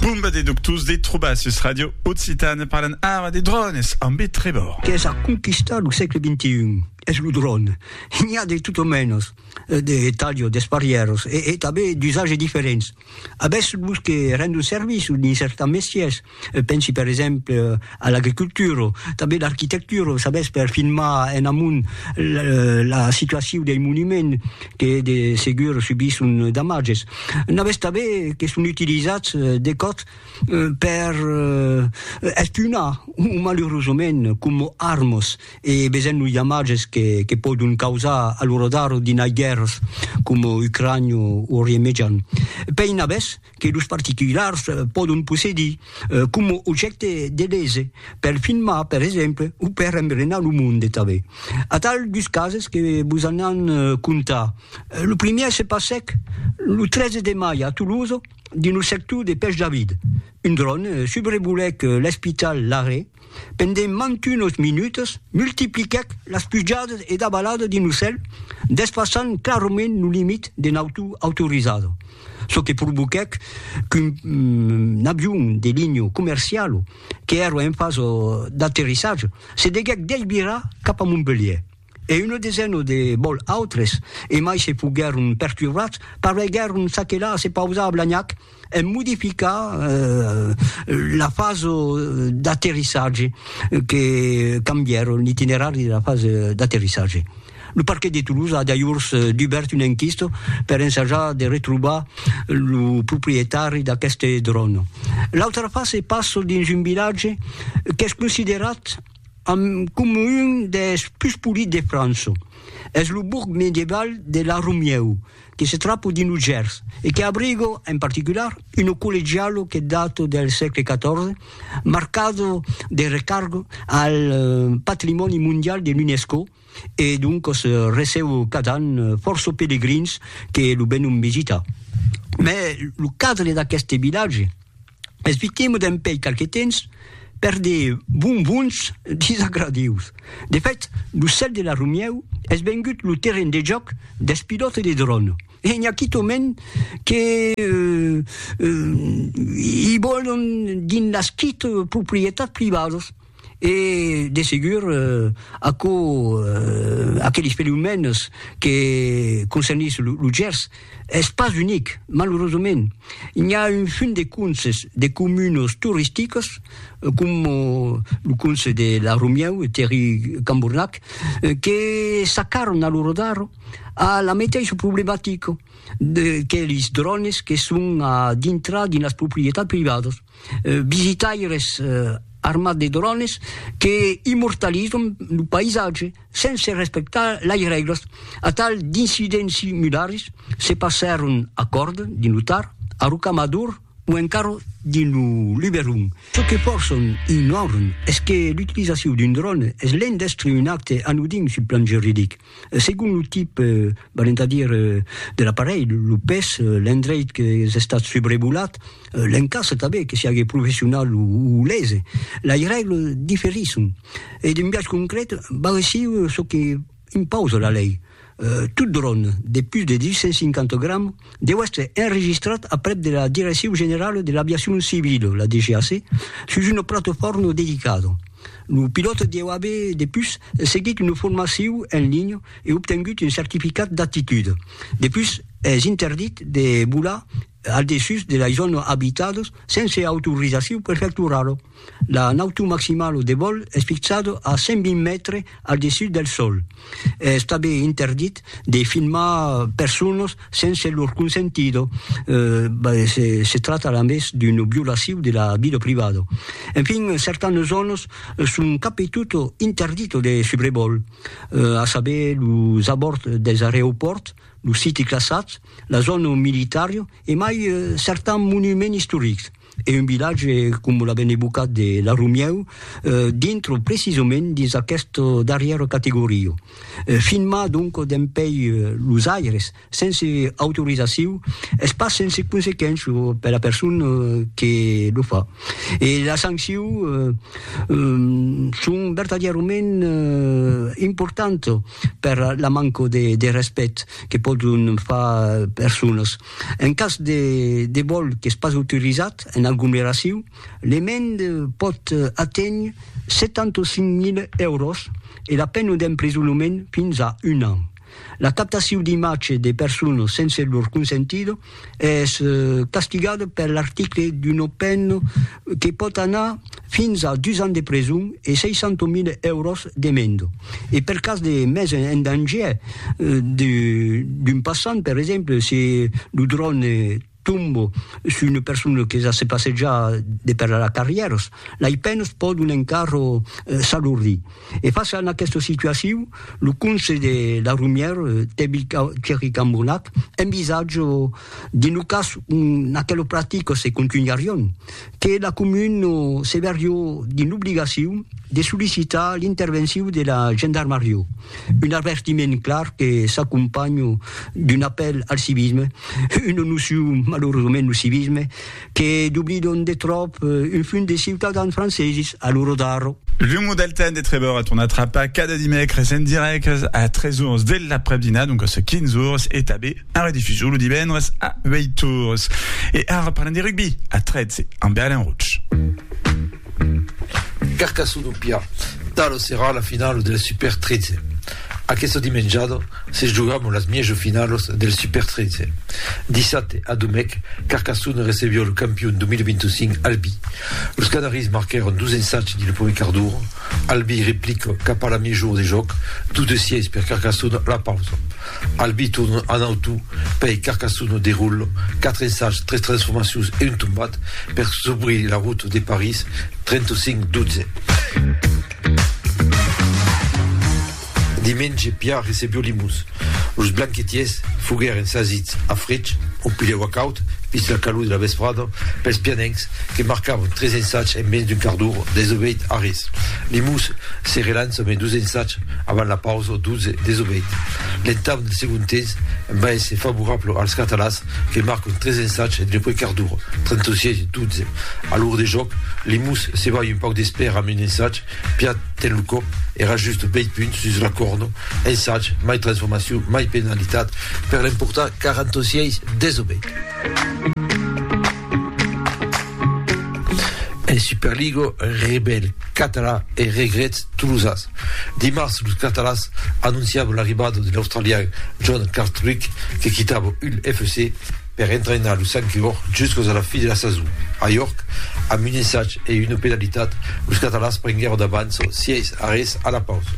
Bomba de doctors de trobar sus Ràdio Occitània parlan ara de drònes ambe Trevor. Qu'es a conquistar lo sègle xxi es lo dròn. N'i a de tot o mènos, de talhos, d'esparièros e tanben d'usatges diferents. Avètz los que rendon servici dins cercant mestièrs, Pensi per exemple a l'agricultura, tanben l'arquitectura, sabètz, per filmar en amont la situacion dei monuments que de segur subisson damatges. N'avètz tanben que son utilizats de còps per espionar, o malurosament coma armas, e vesèm los damatges que pòdon causar a lo radar dinai guèrras coma Ucrània o Orient Mejan. Pei n'avètz? que los particulars pòdon possedir coma objècte de lese, per filmar, per exemple, o per embrenar lo monde tanben. Atal dus cases que vos anam contar. Lo primièr se passèc lo 13 de mai a Tolosa, dins lo sector de Pèch David. Un dròn subrevolèc l'Espital Larrey. Pendent mantunos minutas, multipliquèc las pujadas e davaladas d'un ocèl, despassant clarament lo limit de nautor autorizada, çò que provoquèc qu'un avion de linha comerciala, qu'èra en fasa d'aterrissatge, se deguèc desvirar cap a Montpelhièr. e una desena de bòl autres, e mai se foguèron perturbats, pareguèron s'aquelar a se pausar a Blagnac en modificar la fasa d'aterrissatge, que cambièron l'itinerari de la fasa d'aterrissatge. Lo parquet de Toulouse a dajors dubèrt una enquista per ensajar de retrobar lo proprietari d'aqueste dròn. L'autra fasa passa dins un vilatge qu'es considerat, Amb coma un des pus polits de França. Es lo bourg medieval de La Romieu, que se trapo dins lo Gers e que abriga, en particular, una collegiala que data del sègle XIV, marcada de recarga al patrimòni mondial de l'UNESCO e doncas receba cada an fòrça pelegrins que lo venon visitar. Mai lo cadre d'aqueste vilatge. Esvitemo dempèi qualque temps per de bonbons disagradius. De fèt, lo cèl de la Romièu es vengut lo terren de jòc dels pilòtes de dròn e n'i a quitòment que i vòlon dins las quite proprietats privadas. e de segur aquò aqueles fenomèns que concernís lo Gers es pas unic, malurosament n'i a un fum de conses de comunes toristicas coma lo conse de la Romieu e Terri Cambornac que s'acarran a lo rodar a la meteissa problematica de que lis drònes que son a dintrar dins las proprietats privadas. Visitaires armats de drones que immortalizan lo païsatge sense respectar las règlas. Atal d'incidents similars se passèron a Còrde, dins lo Tar, a Rocamador o encara dins lo Luberon. Çò que fòrça ignoran es que l'utilizacion d'un drone es l'endestré un acte anodin sul plan juridic. Segon lo tip, valent a dire, de l'aparelh, lo pes, l'endreit qu'es estat subrevolat, l'encastre tanben, que siague professional o lese, lei règle diferisson e d'un biais concret val aicí çò que impausa la lei, tot dròn de pus de 250 grams deu èstre enregistrat aprèp de la Direccion Generala de l'Aviacion Civila, la DGAC, sus una platefòrma dedicada. Lo pilòt deu aver depus seguit una formaciu en linha e obtengut un certificat d'aptitud. Depus es interdit de volar al dessús de lei zòna abitadas sense autorizaciu prefecturala. La nautu maximala de vòl es fixada a 120 mètres al dessús del sòl. Es tanben interdit de filmar personas sense lor consentida, se tracta a més d'una violacion de la vida privada. Enfin, certanas zònas son cap e tot interditas de subrevòl, a saber los abòrds dels areopòrts, los siti classats, la zòna militària e mai certans monuments istorics. e un vilatge com la ben evocat de la Romieu dintre precisament dins aquesta darrièra categoria. Filmar donc dempèi los aires sense autorizaciu es pas sense consequéncia per la persona que lo fa e las sancciu son vertadièrament importantas per la manca de respèct que pòdon far personas En cas de vòl qu'es pas autorizat en aglomeracion, l'emenda pòt aténher 75.000 èuros e la pena d'emprisonament fins a un an. La captacion d'imatge de personas sense lor consentida es castigada per l'article d'una pena que pòt anar fins a dus ans de preson e 600.000 èuros de menda, e per cas de mesa en dangièr d'un passant, per exemple, se lo dròn tomba sus una persona que se passeja de per la carrièra, lei penas pòdon encara s'alordir. E fàcia en aquesta situacion, lo conselh de la Romièra, Tevil Thierry Cambonnac, envisatja, Dins lo cas n'aquelo practica se contunharion, que la comuna se verrió dins l'obligacion de sollicitar l'intervencion de la gendarmaria, un avertiment clar que s'acompanha d'un apèl al civisme, una nocion malauradament lo civisme, que doblidon de tròp un fum de ciutadans franceses a lo rodarro. L'umo del temps de Trevor a tornat trapar cada dimècres en dirèct a 3 ors de l'aprèp-dinar, doncas 15 ors, e tanben en redifusion lo divendres a 8 ors. E ara parlam de rugbi a 13 amb Alain Roche. Carcassona o Pià, talo serà la finalo del Super 13. Aqueste dimenjada se jogam las mièjo finalas del Super 13. Dissabte a Domèc, Carcassona recebió lo campion 2025 Albi. Los canaris marquèron dos ensatge dins lo primièr quart d'ora, Albi replica cap a la mièjor de jòc, 2 de 6 per Carcassona a la pausa. Al biton en auto pèi Carcassonne derollo quatre ensajs, tres transformacions e un tombat per s'obrir la route de París 35 12. Dimenge Piar recebió Limós. Los blanquetiers foguèren sasits a frech, un pilhèu acaut, vist la calor de la vesprada, pels pianencs que marcavan tres ensajs en mens d'un quart d'ora, desobeït a res. Limós se relança mai dos ensajs Avant la pausa, Dutze desobeït. L'entame del segond temps va èsser favorable als catalans que marcon tres ensatges entre Puigcardur, 36, e Dutze. A l'or de jòc, Limús se balha un pauc d'espèra amb un ensatge, Piat ten lo còp e rajusta bèi punt sus la còrna, ensatge, mai transformacion, mai penalitat per l'emportar, 46, desobeït. En Superliga, rebèl catalan e regrets tolosans. Dimars, los catalans anonciavan l'arribada de l'australian John Cartwrick que quitava Hull FC per entrainar los Sankiords juscas a la fi de la sason. A York, amb un ensag e una penalitat, los catalans prenguèron d'avànça 6 a res a la pausa.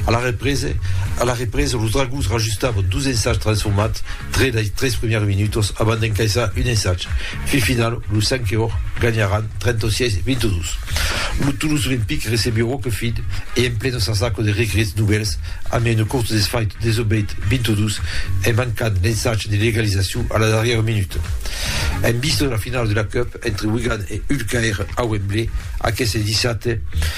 A la represa, los Dragons rajustavan dos ensags transformats Tre dei tres primièrs minutos abans d'encaissar un ensag fin final, los Sanqueòr ganharàn 36 22. Lo Toulouse Olympique recebió Roquefide e en pleno s'asaco de regrets novèls amb un cort desfait desobeit 22 en mancant l'ensag de l'egalizacion a la darrièra minuta. En vista de la finala de la Cup entre Wigan e Hull Caire a Wembley aqueste dissabte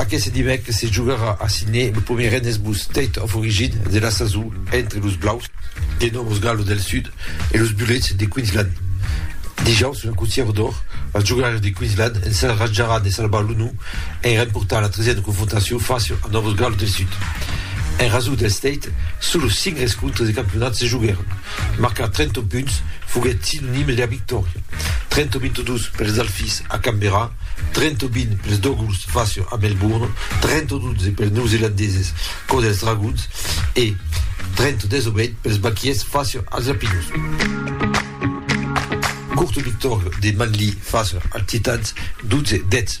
Aqueste dimècres se jogarà a Sidney lo primièr Rennes Blues State of Origin de la sason entre los Blaus de Nòvo Galo del Sud e los Bullets de Queensland. Dijaus, una cotièra d'òr, los jogaires de Queensland ensajaràn de salvar l'onor en remportant la tresièna confrontacion fàcia a Nòvo Galo del Sud. En rasor del State, solos cinc rescontres de campionat se joguèron. Marcar 30 punts foguèt sinonime de la victòria, 30-22 pels Alphys a Canberra, 30-20 pels Dogulls fàcia a Melbourne, 30-12 pels Neozelandeses cò dels Dragons e 30-18 pels Baquiers fàcia als Lapinos. Curta victòria de Manly fàcia als Titans, 12-10.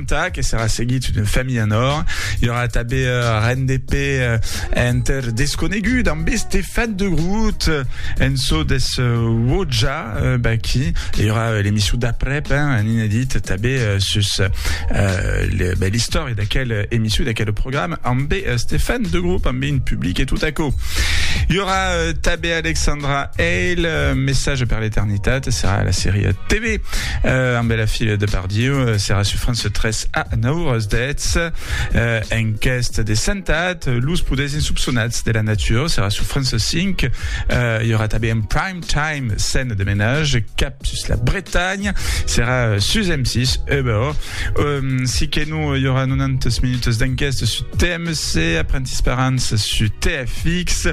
Entà que serà seguit una familha en òr, i aurà tanben ren de pè enter desconegut amb Estefan de Groot en çò des Wodja Baki. I aurà l'emission d'aprèp, un inedit tanben sus l'istòria d'aquel emission, d'aquel programa amb Estefan de Groot, amb un public e tot aquò. I aurà tanben Alexandra Hale, Message per l'eternitat, serà la sèria TV. euh, amb la fila de Bardieu euh, serà sur France 3 a 9 horas 10 euh, enquest de sentat los poders insubsonats de la nature serà sur France 5 euh, il y aura també un prime time scène de ménage cap sus la Bretagne serà euh, sus M6 eh ben, oh. euh, si que nous il y aura 90 minutes d'enquest sur thème Se aprènt Esperanç sus TFX.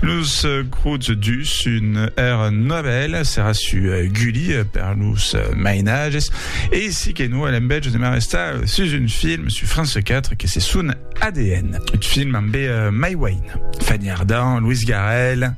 Los grots dus un er novèl serà sus Gulli per los mainages e si que no l'embètge de m'arrestar sus un film sus France 4 que se son ADN. Un film ambe Mai Wayne, Fanny Ardant, Louis Garrel.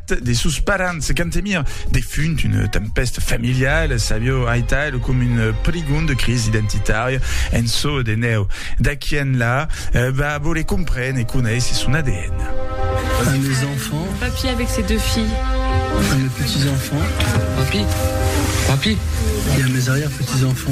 de sos parents Cantemir defunt una tempèsta familiala Savio aital com una prigonda crisi identitària en çò de nèu d'aqui enlà va voler comprene e conéisser son ADN. Un des enfants Papy avec ses deux filles Un des petits enfants Papy Papy Il y a mes arrière petits enfants.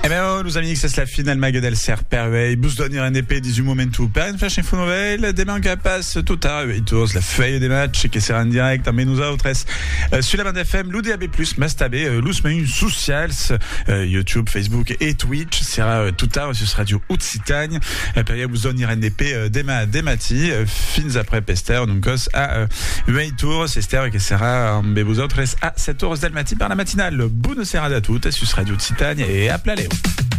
E ben, los amics, es la fin del Mague del Cèrc per uèi. Bus doni rendepè dins un moment o per un flash info novèl. De mancar pas, tota uèi tos, la fèia de match que serà en dirècte ambe nosautres sus la banda FM, lo DAB+, mas tanben los mejans socials, YouTube, Facebook e Twitch. Serà tota sus Radio Occitània. Cagn, e per ieu zòni rende pe demà de matí, fins après p'èster d'un còs a 8 ores, èster que serà ambe vosautres a 7 ores del matí per la matinal. Bona serada a totes sus Radio Occitània e a Plalèu!